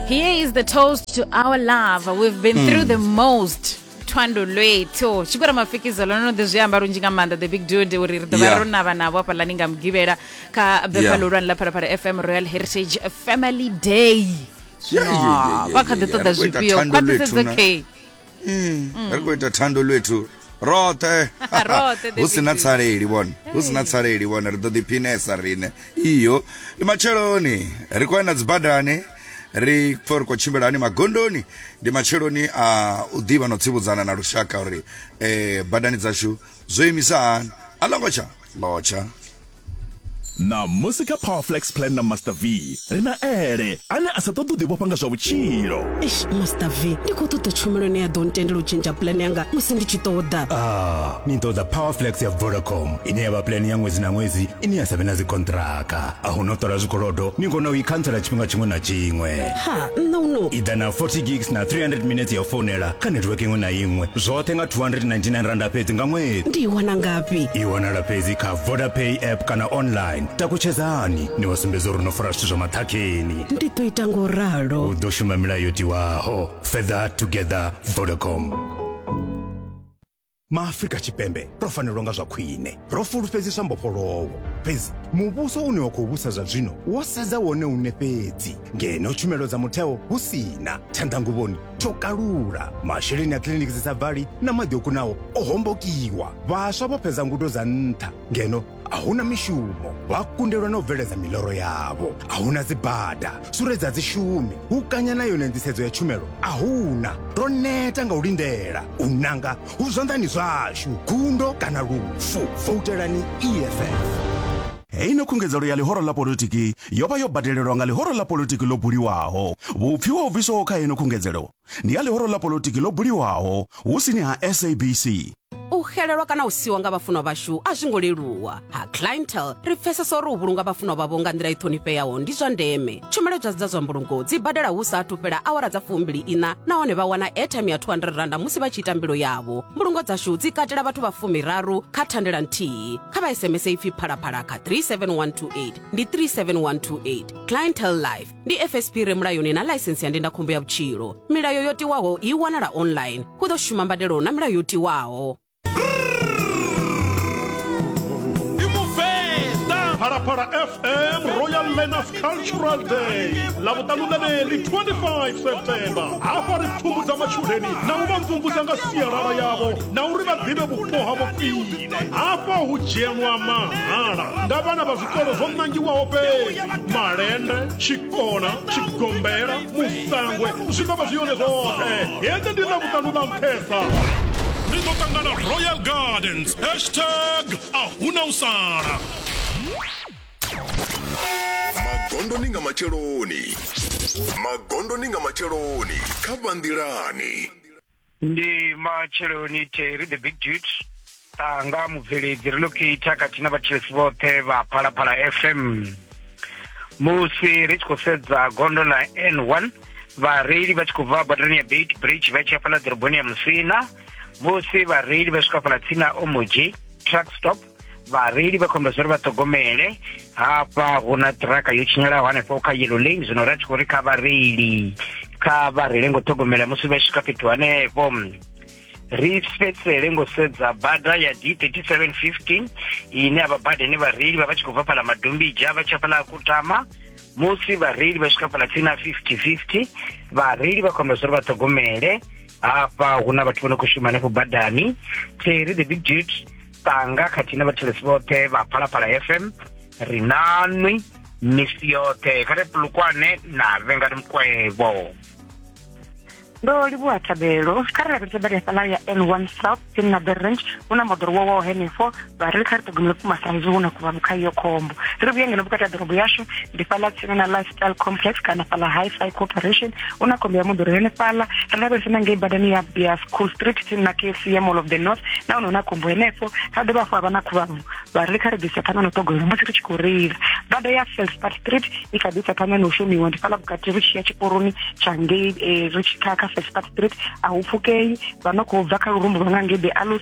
Here is the toast to our love. We've been mm. through the most. thwando lwethu chikora mafikizo lono ḓi zwi amba lunzhi nga maanḓa the big dude uri ri ḓo vha Yeah. ro navha navho hafha lani nga mugivhela kha befa Yeah. ḽihulwane ḽa phalaphala fm royal heritage family day Yeah, yeah, yeah, yeah, vha kha ḓi yeah, yeah. ṱoḓa Ri khou ita zwifhio thando lwethu khwaṱhisedzo na- k ri khou ita thando lwethu roṱhe Roṱhe, hu si na David. tsaleli vhone hu si na tsaleli vhone ri ḓo ḓiphinesa riṋe iyo ndi matsheloni ri khou ya na dzibadani ri pfa ri khou tshimbila hani magondoni ndi matsheloni a u ḓivha na u tsivhudzana na lushaka uri um badani dzashu zwo imisa hani a ḽo ngo tsha lotsha Ṋamusi kha Powerflex Plan na Master V, ri na Ele, ane a sa ṱoḓi u ḓivhofha nga zwa vhutshilo. Eish, Master V, ndi khou ṱoḓa tshumelo ine ya ḓo ntendela u tshentsha plan yanga musi ndi tshi ṱoḓa. Ah, ni ṱoḓa Powerflex ya Vodacom, ine ya vha plan ya ṅwedzi na ṅwedzi ine ya sa vhe na dzikonṱiraka. A hu na u ṱola zwikolodo, ni kona u i khantsela tshifhinga tshiṅwe na tshiṅwe. Ha, nṋe u no. I ḓa na 40 gigs na 300 minetse ya u founela kha network iṅwe na iṅwe, zwoṱhe nga R299 fhedzi nga ṅwedzi. Ndi i wana ngafhi? I wanala fhedzi kha. vodapay app kana online takutshedzani ni wa sumbedza uri no fara zwithu zwa maṱhakheni ndi ḓo ita ngo ralo u ḓo shuma milayo yo tiwaho further together vodacom maafrika tshipembe ro fanelwa nga zwa khwine ro fulufhedziswa mbofholowo fhedzi muvhuso une wa khou vhusa zwa zwino wo sedza wone une fhedzi ngeno tshumelo dza mutheo hu si na tshanḓanguvhoni tsho kalula masheleni a kiliniki dzi sa bvali na maḓi o kunaho o hombokiwa vhaswa vho fhedza ngudo dza nṱha ngeno a huna mishumo vha kundelwa na u bveledza miloro yavho a huna dzibada suredza dzishumi hu kanya na yone nḓisedzo ya tshumelo a huna ro neta nga u lindela u nanga hu zwanḓani zwashu gundo kana lufu voutelani eff Heino khungedzelo ya ḽihoro ḽa politiki yo vha yo badelelwa nga ḽihoro ḽa politiki ḽo buliwaho. Vhupfiwa ho bviswaho kha heino khungedzelo ndi ha ḽihoro ḽa politiki ḽo buliwaho hu sini ha SABC. U xelelwa kana u siwa nga vhafunwa vhashu a zwi ngo leluwa. Ha Clientele, ri pfesesa uri u vhulunga vhafunwa vhavho nga nḓila i ṱhonifheaho ndi zwa ndeme. tshumelo dza dza zwa mbulungo dzi badela hu sa athu fhela awara dza fumbili ina nahone vha wana airtime ya 200 randa musi vha tshi ita mbilo yavho mbulungo dzashu dzi katela vhathu vha fumiraru kha thandela nthihi kha vha sms ipfi phalaphala kha 37128 ndi 37128 clientel life ndi fsp re mulayoni na ḽaisensi ya ndindakhombo ya vhutshilo milayo yo tiwaho i wanala online hu ḓo shuma mbadelo na milayo yo tiwaho Parapara FM Royal Learners Cultural Day lavutanu laveli 25 september hafha ri pfumbudza matshudeni na u vha mvumvusa nga sialala yavho na uri vha ḓivhe vhupo havho khwine hafha hu dzhenwa mahala nga vhana vha zwikolo zwo nangiwaho fhedzi malende tshikona tshigombela sangwe zwikwama zwi yone zwoṱhe hende ndi na vhuṱanu na nṱhesa ri ḓo ṱangana royal gardens hashtag ahuna u sala magondoni nga matsheloni magondoni nga matsheloni kha vhanḓilani Ndi matsheloni Terry the big dude Tanga mubveledzi relocator khathihi na vhathetshelesi vhoṱhe vha Phalaphala FM musi ri tshi khou sedza gondo ḽa N1 vhareili vha tshi khou bva badani ya Beit Bridge vha tshi ya fhaḽa ḓoroboni ya Musina musi vhareili vha swika fhaḽa tsini na Omoji truck stop vhareili vha khomba zwa uri vha ṱhogomele hafha hu na ṱiraka yo tshinyalaho hanefho kha yellow lane zwino ri a tshi khou ri kha vhareili kha vha reile ngo ṱhogomela musi vha swika fhethu hanefho ri fhedzele ngo sedza bada ya d 3715 ine ya vha bada ine vhareili vha vha tshi khou bva fhala madombija vha tsha fhala kutama musi vhareili vha swika fhala tsini na 5050 vhareili vha khomba zwa uri vha ṱhogomele hafha hu na vhathu vho no khou shuma hanefho badani terry the big dude tanga khathihi na vhathelesi vhoṱhe vha phalaphala fm ri nanwi misi yoṱhe kha re pulukwane na vhengani mukwevho ndo livhuwa thabelo kha ri lavhelese bada hafhaḽa ya n one south tsini na berrange hu na moḓoro wowaho henefho vha ri kha ri ṱhogomele vhukuma sa izwi hu na kuvhanu kha iyo khombo ri vhuye ngeno vhukati ha ḓorobo yashu ndi fhaḽa tsini na lifestyle complex kana fhaḽa high fi corporation u na khombo ya moḓoro henefhaḽa ri lavhelese na ngei badani ya ya school street tsini na kfc ya mall of the north na hone hu na khombo henefho ha dovha hafhu ha vha na khuvhabvu vha ri kha ri ḓisa phanḓa na u ṱhogomela musi ri tshi khou reila bada ya felspar street i kha ḓisa phanḓa na u shumiwa ndi fhaḽa vhukati ri tshi ya tshiporoni tsha ngei eh, ri tshi kha kha felspar street a hu pfukei vha no khou bva kha lurumbu lwa nga ngei the alus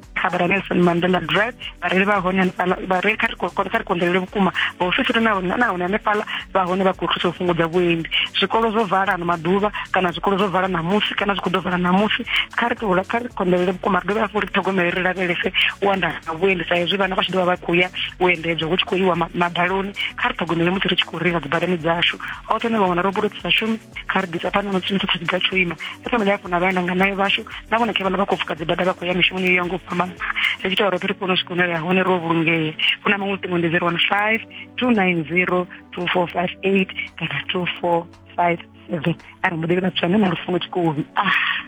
khabara nelson mandela drive vhareili vha hone hanefhala vhareili kha ri kha ri konḓelele vhukuma vhaofisiri na hone na hone hanefhala vha hone vha khou thusa u fhungudza vhuendi zwikolo zwo vala ano maḓuvha kana zwikolo zwo vala ṋamusi kana zwi khou ḓo vala ṋamusi kha ri tovhula kha ri konḓelele vhukuma ri dovhe hafhu ri ṱhogomele ri lavhelese u anda ha vhuendi sa hezwi vhana vha tshi ḓovha vha khou ya u endedzwa hu tshi khou iwa madaloni kha ri ṱhogomele musi ri tshi khou reila dzibadani dzashu hoṱhe ne vhaṅwe na ro bulo dzi sa shumi kha ri ḓisa phanḓa na tshino tshoṱhe tshiga tsho ima sa famile hafhu na vhana nga nayo vhashu na vhona khe vhana vha khou pfuka dzibada vha khou ya mishumoni yo ya nga u fhambana ri tshi ita uri ri kone u swika hune ri ya hone ro vhulungea hu na maṅwe luṱingo ndi zero one five two nine zero two four five eight kana two four five seven a ri muḓeli vhathu ane na lufuno tshikovi ah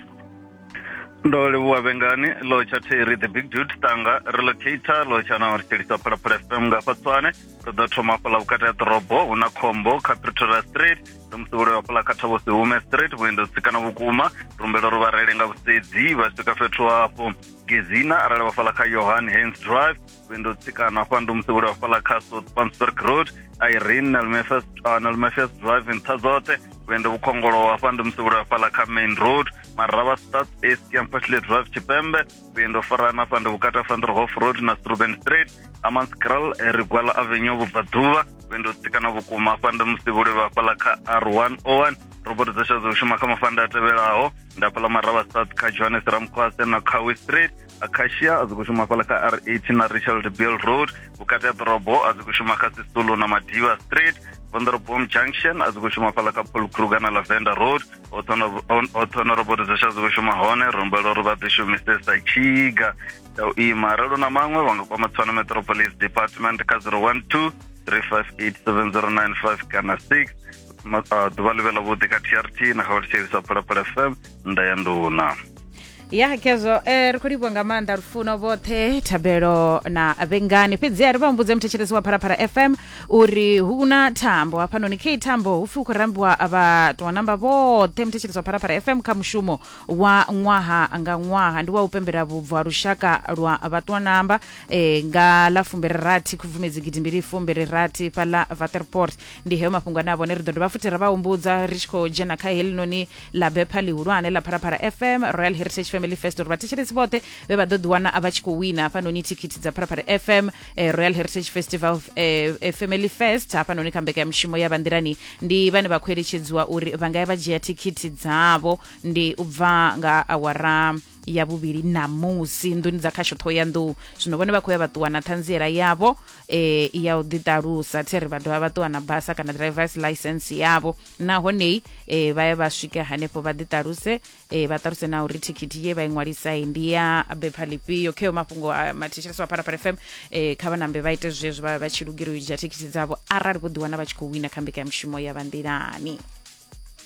ndo livhuwa vhengani lotsha theri the big dude tanga relocator lotsha na ri tshelisa phalaphala fm nga fatswane ri ḓo thoma fhala vhukati ha ḓorobo hu na khombo kha pretoria street ndo musevhulelo wa pula kha thavho si hume straight vhuendo tsikana vhukuma rumbelo ri vharele nga vhusedzi vha swika fhethu hafho gezina arali vhafhala kha yohan hans drive vhuendo tsikana hafha ndo musevhulelo wa fhala kha south pansburg road irene nalmefes uh, nalmefes drive nṱha dzoṱhe vhuendo vhukhongolo hafha ndo musevhulelo wa fhala kha main road marava stats east campasle drive tshipembe vhuendo farana afha ndi vhukati ha fanderhof road na struben street amanscral eh, rigwala avenue vhubvaḓuvha vhuendo tsikana vhukuma afha ndi musi vho livha hafhaḽa kha r101 robot dza sha dzo shuma kha mafanda a tevhelaho nda fhaḽa maravha south kha johannes ramkhwase na khawi street acacia a dzi khou shuma hafhaḽa kha r8 na richard bill road vhukati ha ḓorobo a dzi khou shuma kha sisulu na madiva street vonderobom junction a dzi khou shuma hafhaḽa kha paul kruger na lavender road oṱhono roboto dza shadzi shuma hone rumbela uri vha ḓi shumise sa tshiga tsha u ima arali na maṅwe vha nga kwama tswana metropolis department kha 012 3587095 kana 6 ḓuvha ḽi vhe ḽa vhuḓi kha trt na kha vha tshivhisa phalaphala fm nda ya nduna ya kezwo eh, ri khou livhuwa nga maanḓa lufuno vhoṱhe thabelo na vhengani fhedziha ri vha humbudze muthetshelesi wa pharapara fm uri hu na thambo hafhanoni khe thambo hupfi hu khou rambiwa vhatoa namba vhoṱhe muthetshelesi wa pharapara fm kha mushumo wa ṅwaha nga ṅwaha ndi wa u pembela vhubvo ha lushaka lwa vhatoa namba eh, nga ḽa fumbiri rathi khubvumedzi gidimbili fumbiri rathi fhaḽa vaterport ndi heyo mafhungo ane a vhone ri ḓo dovha futhi ra vha humbudza ri tshi khou dzhena kha helinoni ḽa bepha ḽihulwane ḽa pharapara fm royal heritage family fest uri vhathetshelesi vhoṱhe vhe vha ḓo ḓiwana a vha tshi khou wina hafhanoni thikhithi dza pharapara fm eh, royal heritage festival eh, eh, family fest hafhanoni kha mbekanyamushumo ya bandirani ndi vhane vha khou eletshedziwa uri vha nga ya vha dzhia thikhithi dzavho ndi u bva nga awara ya vhuvhili ṋamusi nḓuni dza khasho ṱhohoyanḓou zwino vhone vha khou ya vha ṱuwa na ṱhanziela yavho um ya u ḓiṱalusa theri vha dovha vha ṱuwa na basa kana drivers license yavho nahonei um vha ya vha swike hanefho vha ḓiṱaluse um vha ṱaluse na uri thikhithi ye vha i ṅwalisai ndi ya bepha ḽifhio kheyo mafhungo a mathetshelesa wa pharapara fm um kha vha nambe vha ite zwezwo vha vha tshi lugela u dzhia thikhithi dzavho arali vho ḓiwana vha tshi khou wina kha mbekanyamushumo ya vha nḓilani